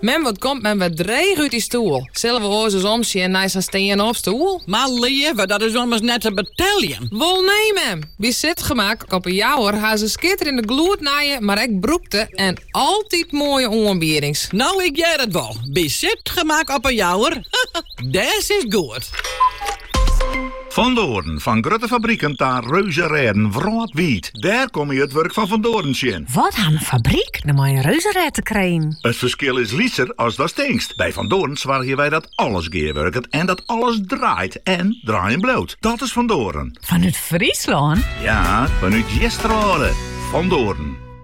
Mem, wat komt mem wer dreech út dy stoel. Sille we oars ris omsjen nei sa'n stean-op stoel? Mar leave, dat is ommers net te beteljen. Wol nee, mem! By Sitgemak op De Jouwer ha se skitterjende gloednije, mar ek brûkte en altyd moaie oanbiedings. No, ik hear it wol. By Sitgemak op De Jouwer, dêr sitst goed. Van Doorn, fan grutte fabriken ta reuzenrêden wrâldwiid, dêr komme je it wurk fan Van Doorn tsjin. Wat hat in fabryk no mei in reuzenrêd te krijen? It ferskil is lytser as datst tinkst. By Van Doorn soargje wy dat alles gearwurket en dat alles draait en draaien bliuwt. Dat is Van Doorn. Fanút Fryslân? Ja, fanút Easterwâlde. Van Doorn.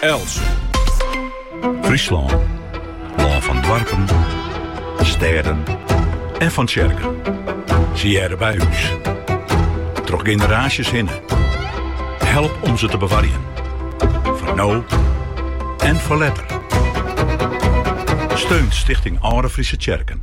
Els. Fryslân. Lân fan doarpen, stêden en fan tsjerken. Sy hearre by ús. Troch generaasjes hinne. Help om ze te bewarjen. Foar no en foar letter. Steun Stichting Alde Fryske Tsjerken.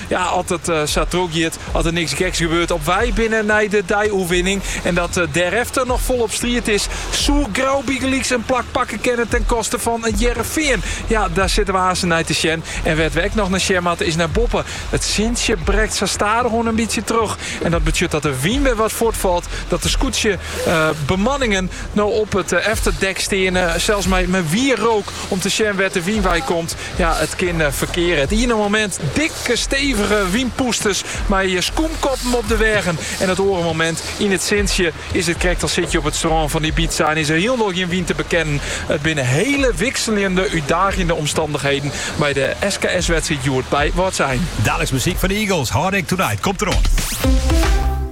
Ja, as it sa trochgiet, as der niks geks gebeurt, op wei binne nei de dei-oerwinning en dat dêrefter noch folop striid is, soe Grou bygelyks in plak pakke kinne ten koste fan It Hearrenfean. Ja, dêr sitte we aansten nei te sjen en wêr't we ek noch nei sjen moatte is nei boppe. it sintsje brekt sa stadichoan in bytsje troch en dat betsjut dat de wyn wer wat fuortfalt, dat de skûtsjebemanningen no op it efterdek steane, sels mei wierrook om te sjen wêr't de wyn wei komt. Ja, it kin ferkeare. It iene momint dikke stevige wynpûsters mei skûmkoppen op de weagen. En it oare momint yn it sintsje is it krekt as sitte je op it strân fan Ibiza en is der hielendal gjin wyn te bekennen. It binne hiele wikseljende, útdagjende omstannichheden by de SKS-wedstriid hjoed by Wâldsein. Daliks muzyk fan de Eagles, Heartache Tonight, komt der oan.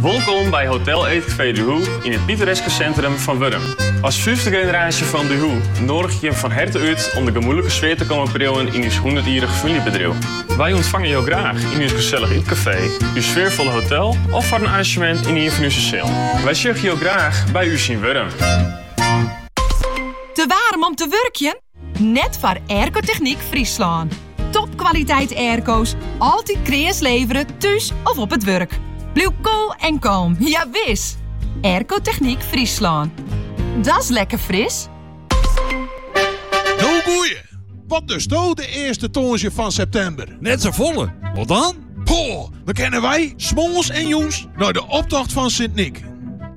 Wolkom by Hotel Eetcafé De Hoe yn it pittoreske sintrum fan Wjelsryp. As fifte generaasje fan De Hoe nûgje wy jo fan herte út om de gemoedlike sfear te kommen priuwen yn ús hûndertjierrich famyljebedriuw. Wy ûntfange jo graach yn ús gesellich ytkafee, ús sfearfolle hotel of foar in arrangemint yn ien fan ús sealen. Wy sjogge jo graach by ús yn Wjelsryp. Te waarm om te wurkjen? Net foar Aircotechniek Fryslân. Topkwaliteit airco's, altyd kreas levere, thús of op it wurk. Bliuw koel en kalm, ja wis! Aircotechniek Fryslân. Dat's lekker Fris! No goeie! Wat dosto de earste tongersdei fan septimber? Net sa folle, wat dan? Poh, dan kinne wy, moarns en jûns, nei de optocht fan Sint Nyk.